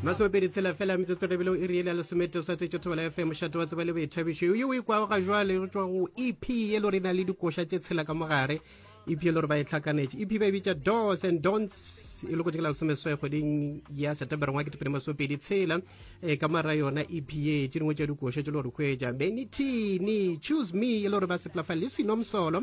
Masomepedi tshela fela metsotso re bile o iri ele ya lesometee o sa tletše thobela ya fm mošate wa tseba le boithabišo yo o ikwago ga jwale go tšwa go ep ye lo re na le dikoša tše tshela ka mogare ep ye lo re ba e tlhakanetše ep ba e bitša dos and dons e lokotše ke la lesomeswai kgweding ya setembere ngwa ketepedi masomepedi tshela e ka mara yona ep ye tše dingwe tša dikoša tše lo re hwetša benitini choose me e lo re ba sepelafa le sinomsolo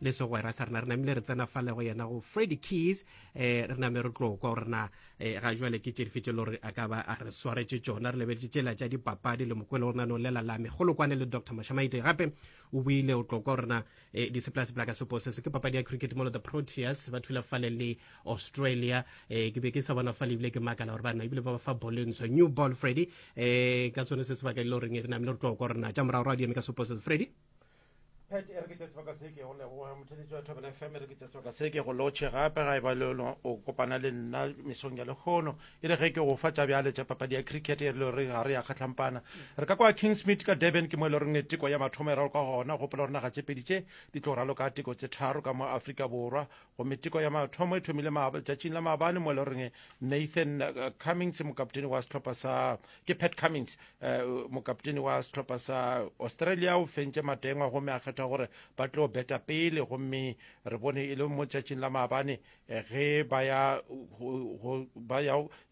le segwera sa rena re namile re tsena fale go yena go freddy keys um re name re tlo kwa gore na um ga jale ke tše dife tše le gore a ka ba a re swaretse tsona re lebeletse tsela tša dipapadi le mokwele gore na ne o lela lame golokwane le dr mashamaite gape o buile o tlo kwa gore na um diseplasepla ka sepo se se ke papadi ya cricket molo the proteas ba thula fale le australia um ke be ke sa bona fale ebile ke makala gore bana ebile ba ba fa bole ntsho new ball freddy um ka sone se sebaka e le goreng re namile re tlo kwa gore na tša morago ra di eme ka sepo se freddy Pet e re ke tša sebaka se ke go leboga motheletse wa Thobela FM e re ke tša sebaka se ke go lotšhe gape ga e ba le lona o kopana le nna mesong ya lekgono e re ge ke go fa tša bjale tša papadi ya cricket e re le gore ga re ya kgatlhampana re ka kwa Kingsmead ka Durban ke mo e le goreng teko ya mathomo e raloka gona gopola gore naga tše pedi tše di tlo raloka teko tše tharo ka mo Afrika Borwa gomme teko ya mathomo e thomile letšatšing la maabane mo e le goreng nathan uh, cummings mokapteni wa sehlopha sa ke pat cummings uh, mokapteni wa sehlopha sa australia o fentše matengwa gomme a kgetha gore ba tlo beta pele gomme re bone e le mo letšatšing la maabane eh, ge ba ya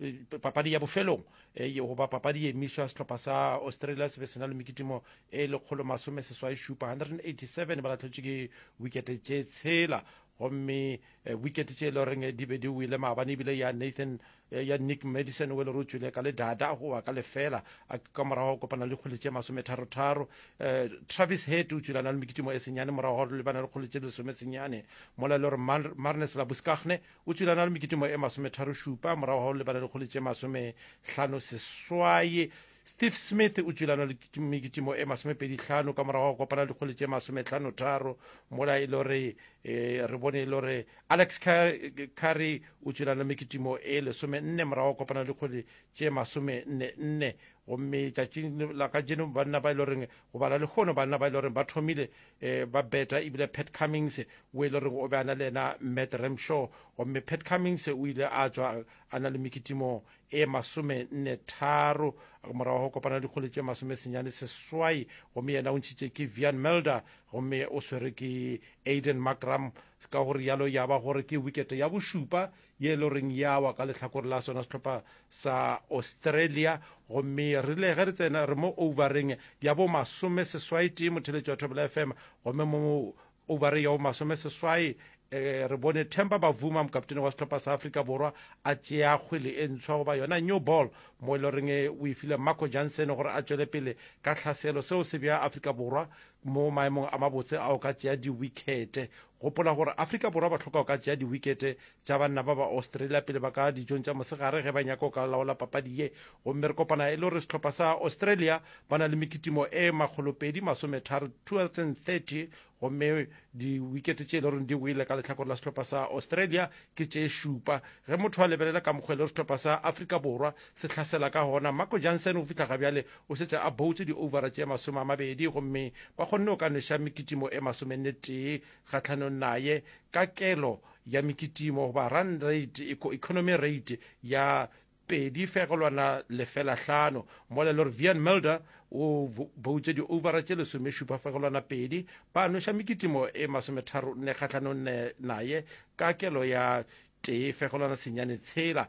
eh, papadi ya bofelong eh, goba papadi ye emišwa sehlopha sa australia se be se na le mekitimo e lekgolo masome seswai šupa 187 ba lahletšwe ke wikete tše tshela gomme eh, wikete tše e le goreng di be di wile maabane ebile ya nathan eh, ya nick madison o e le gore o tswile ka le dada go wa ka lefela a ka morago kopana le kgole tše masometharotharo eh, travis head o tswile a na le mekitimo e senyane morago ga gore le bana le kgole tše le lesome senyane mola e le gore marnes labuskagne o tswile a na le mekitimo e masometharo šupa morago ga gore le bana le kgole tše masometlhano seswai Steve Smith o tšwelana le mekitimo e masomepedi hlano ka morago go kopana le dikgole tše masometlhano tharo mola e le gore eh, re bone e le gore alex carry o tšwelana le mekitimo e lesome nne morago go kopana le dikgole tše masome nne nne gomme tšatšing la ka jeno banna ba e le goreng go bala le kgono banna ba e le goreng ba thomile um ba beta ebile pat cummings o e le goreng o be a na le ena matt ramshaw gomme pat cummings o ile a tswa a na le mekitimo e masome nne tharo morago go kopana dikgole tše masome senyane seswai gomme yena o ntšhitše ke vian melder gomme o swere ke aiden macram ka gore yalo ya ba gore ke wikete ya bošupa ye e le goreng ya wa ka lehlakore la sona sehlopha sa australia gomme re rile ge re tsena re mo overeng ya bo masome seswai tee motheletšo wa thobela fm gomme mo Ovareng ya bo masomeseswai, re bone Themba Bavuma, mokaptene wa sehlopha sa Afrika Borwa, a tšea kgwele e ntshwa goba yona new ball mo e le goreng o e file Marco Jansen gore a tšwele pele ka tlhaselo. Seo se bea Afrika Borwa mo maemong a mabotse a go ka tšea diwikete. Gopola gore Afrika Borwa ba tlhoka go ka tšea diwikete tša banna ba ba Australia pele ba ka dijong tša mosegare ge ba nyaka go ka laola papadi ye gomme re kopana e le gore sehlopha sa Australia ba na le mekitimo e makgolopedi masometharo 230 gomme diwikete tše e le goreng di wele ka lehlakore la sehlopha sa Australia ke tše šupa ge motho a lebelela ka mokgwa e le gore sehlopha sa Afrika Borwa se hlasela ka gona Marco Jansen go fihla ga bjale o šetše a boutse di-overa tše masome a mabedi gomme ba kgonne go ka nweša mekitimo e masomenne tee kgatlhanong naye ka kelo ya mekitimo goba run rate, economy rate ya pedi fegelwana lefela hlano mola e le gore Vian Mulder o boutše di-overa tše lesomešupa fegelwana pedi ba noša mekitimo e masometharonne kgahlanonne naye ka kelo ya tee fegelwana senyane tshela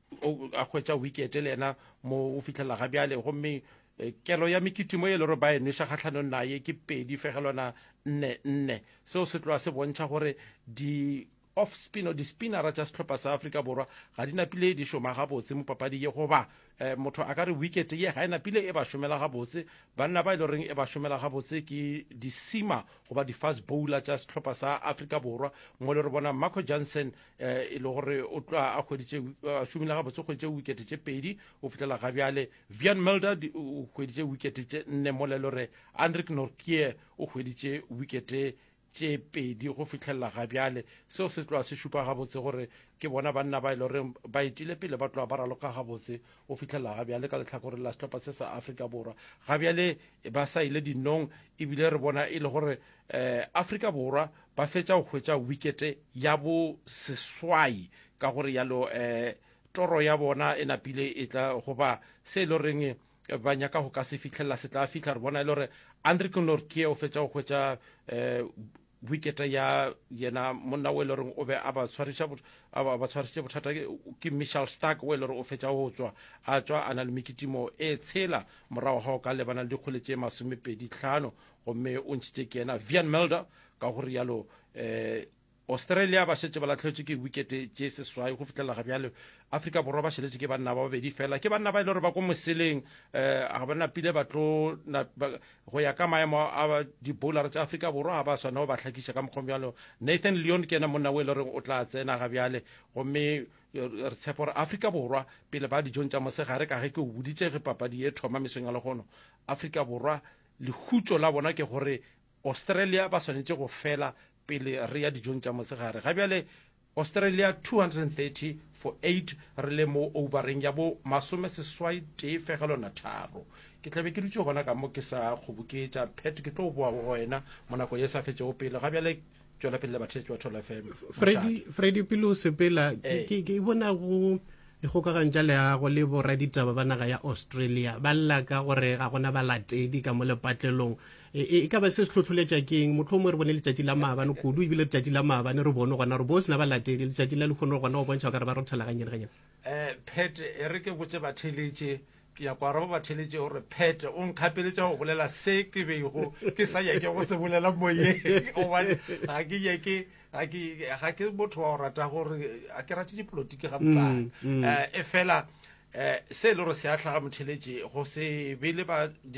a hwetša wikete le yena mo o fitlhelela ga bjale gomme eh, kelo ya mekitimo e le gore ba e nweša kgatlhanong naye ke pedi fegelwana nne nne seo se tloa se bontšha gore di off spin o di-spinnera tša sehlopha sa afrika borwa ga di napile di šoma gabotse mo papadi ye goba um motho a ka re wicket ye ga e napile e ba šomela gabotse banna ba e le goreng e ba šomela gabotse ke di-sima goba di-fast bowler tša sehlopha sa afrika borwa mo le re bona marco johnson eh, e le gore o tlo a kgweditše a šomile gabotse kgweditše wikete tše pedi o fetlela ga bjale vian melder o kgweditše wikete tše nne mo le lore andrik norkie o kgweditše wikete tše pedi go fitlhelela ga bjale seo se tloa se šupa gabotse gore ke bona banna ba e le gore ba etile pele ba tloa ba raloka gabotse go fitlhelela ga bjale ka letlhakore la setlhopha se sa afrika borwa ga bjale ba sa ile dinong ebile re bona e le gore um eh, afrika borwa Ba fetša go hwetša wikete ya bo seswai, ka go realo eh, toro ya bona e napile e tla goba se e loreng ba nyaka go ka se fihlelela se tla fihla. Re bona e le gore Andrick Nortje o fetša go hwetša eh, wikete ya yena monna o e loreng o be a ba tshwariša bot- a ba ba tshwarišitše bothata ke- ke Michel Stark o e lore o fetša go tswa a tswa a na le mekitimo e tshela morago ga go ka lebana le dikgole tše masomepedi tlhano gomme o ntšhitše ke yena vian melder ka go rialo um australia ba šetše ba latlhetswe ke wikete tše seswai go fihlelela ga bjale afrika borwa ba šeletše ke banna ba babedi fela ke banna ba e le gore ba ko moseleng um ga ba napile ba tlo go ya ka maemo a dibowlare tša afrika borwa ga ba swana go ba hlakiša ka mokgong bjalo nathan leon ke ena monna o e le goreng o tla tsena ga bjale gomme eh, re tshepa gore afrika borwa pele ba dijong tša mosegare ka ge ke o boditše ge papadi e thoma mesong ya legono afrika borwa Lehutšo la bona ke gore Australia ba swanetše go fela pele re ya dijong tša mosegare. Ga bjale Australia 230 for 8 re le mo oubareng ya bo masome seswai tee fegelo na tharo. Ke tlabe ke dutše gona ka mo ke sa kgoboketša. Pat ke tlo boa go wena mo nako ye sa fetšego pele ga bjale. tšwela pele le batheletši ba tholo fm fredi pele o sepela eh. ke bona go dikgokagano tša leago le boraditaba ba naga ya australia ba lla ka gore ga gona balatedi ka mo lepatlelong e, e, e ka ba se se tlhotlholetša keng motlho mongwe re bone letšatši la maabane kudu ebile letšatši la maabane re bone gona gore bo sena balatedi letšatši la lekgono gona go bontšha gore ba rothelaganyene ganyene um eh, pet e re ke botse batheletše ke ya kwara o batheletše o re phete o nkgapeletša go bolela se ke bego ke sa nyake go se bolela moyeng gobane ga ke nyake ga ke motho wa go rata gore a ke rate dipolotiki ga botsana mm, mm. Eh, e fela eh, se e le gore se a tlhaga motheletše go se be le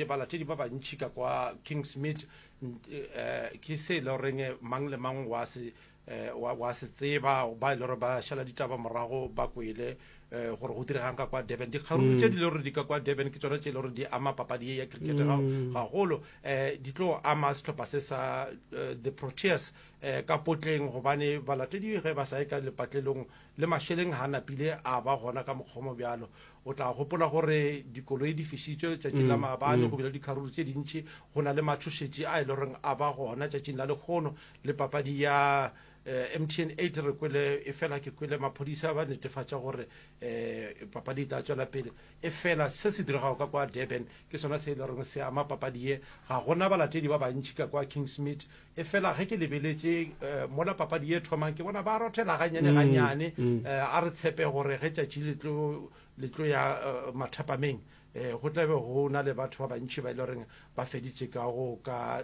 balatedi ba bantšhi ka kwa king smith eh, ke se e le goreng mang le mang wa se Eh, wa, wa se tseba ba ile gore ba šala ditaba morago ba kwele eh, gore go diregang ka kwa durban dikgaruru mm. tše di le gore di ka kwa durban ke tsone tše e le gore di ama papadi ye ya cricket mm. gagolo um eh, di tlo ama setlhopha se sa eh, the proteas um ka potleng gobane balatedi ge ba sa ye ka lepatlelong le mašeleng ga napile a ba gona ka mokgomo bjalo o tla gopola gore dikoloi di fišitswe tšatšing la mm, maabane go bile dikgaruru tše dintšhi go na le matšhošetši a e le goreng a ba gona tšatšing la lekgono le papadi ya eh, mtn 8 re kwele e fela ke kwele maphodisa ba netefatša gore um papadi e tla tswela pele e fela se se diregago ka kwa durban ke sona se e le goreng se ama papadi ye ga gona balatedi ba bantšhi ka kwa kingsmith e fela ge ke lebeletše um mola papadi ye thomang ke bona ba rothela ganyane mm, ganyane um a re tshepe gore ge tšatši le tlo ya eh, mathapameng um go tlabe go na le batho ba bantšhi ba e le goreng ba feditše ka go ka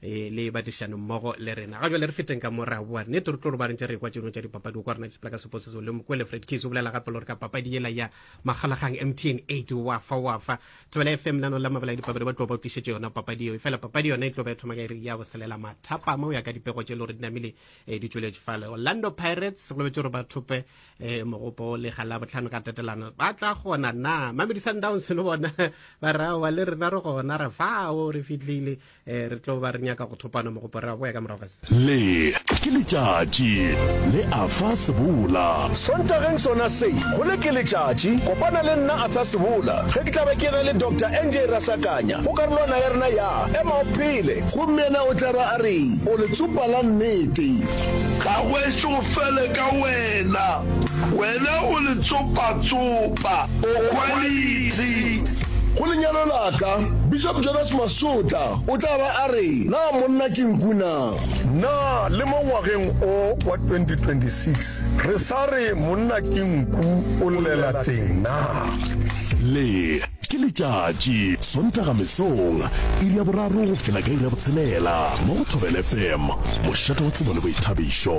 e le badišano mmogo le rena ga jale re feteng ka mo re a boa nnete re tlo roba re ntse re kwa tšeno tša dipapadi o kwa rena sepela ka seposeso le mokwele fred case o bolela gape le gore ka papadi yela ya makgalagang mtn eight wa fa wa fa thobela fm nano la mabala ya dipapadi ba tlo ba tlišetše yona papadi eo efela papadi yona e tlo ba e thoma ka iri ya boselela mathapama o ya ka dipego tše le gore di namile eh, di tšweletše fale orlando pirates go lebetse gore ba thope eh, mogopo le ga la botlhano ka tetelano ba tla gona na mamedi sundowns le bona ba rawa le rena re gona re fao re fitlhile eh, re tlo ba re nyaka go thopana mogopo re a boya ka morago le ke letšatši le afa sebola sontageng sona se go le ke letšatši kopana le nna afa sebola ge ke tlabe ke ge le dr nj rasakanya go karolwana ya rena ya ema o phele gomme yena o tla ba a re o letsopa la nnete ga gweše go fele ka wena wena o letsopa tsopa o quality Go lenyalo la ka, Bishop Jonas Masotla o tla ba a re, Na monna ke nku na? Na le mo ngwageng o wa 2026 re sa re monna ke nku o llela teng na? Le ke letšatši, Sontaga mesong, iri ya boraro go fihla ka iri ya botshelela mo go Thobela FM, mošate wa tsebo le boithabišo.